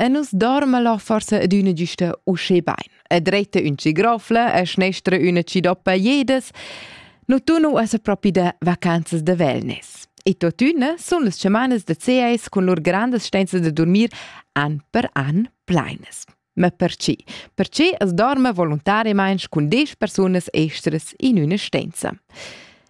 E nus dorme lo forse adüna güsta usché bain. E dretta ün cigrofla e schnestra üna cidoppa jedes. No tunu es propi da vacanzas da wellness. E tuotüna sun las semanas da CAS cun lur grandas stenza da dormir an per an pleines. Ma perché? Perché as dorme voluntariamaing cun 10 persunas estras in üna stenza.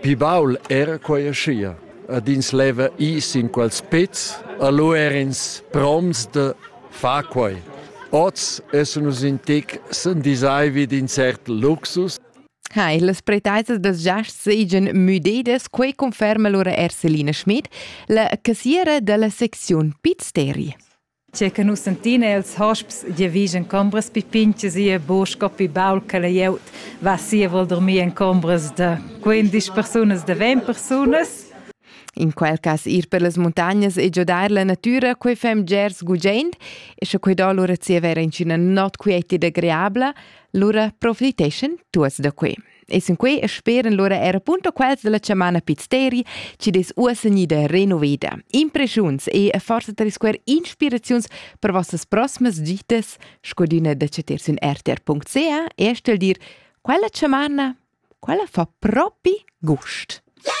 Pli baul era quei aschia. Ed ins leva ir sin quels pezs e lu er'ins promts da far quei. Oz essen nus in tec s'endisai vid in cert luxus. Hai, las preteisas das giasts seigien müdedas, quei conferma lura Erselina Schmid, la cassiera dalla secziun Piz Teri. Tge che nus sentin è els hosps giavisch en combras pipintgas e buc scopi baul che la glieud va sia vuol dormir en combras da 15 persunas da 20 persunas. In quel cas ir per las muntagnas e giodar la natüra, quei fem gers gugent, e sche quei do lura zievera in ina not quieti da greabla, lura profiteschen tuots da quei. E sinquei speran lura era punto quels della chamana Pizzeri, ci des uosenida renoveda. Impreschiuns e forse tre square inspiraziuns per vostas prossimas gitas, scodina da cetersün rtr.ca, e stel dir, quella chamana, quella fa propi gust. Yeah!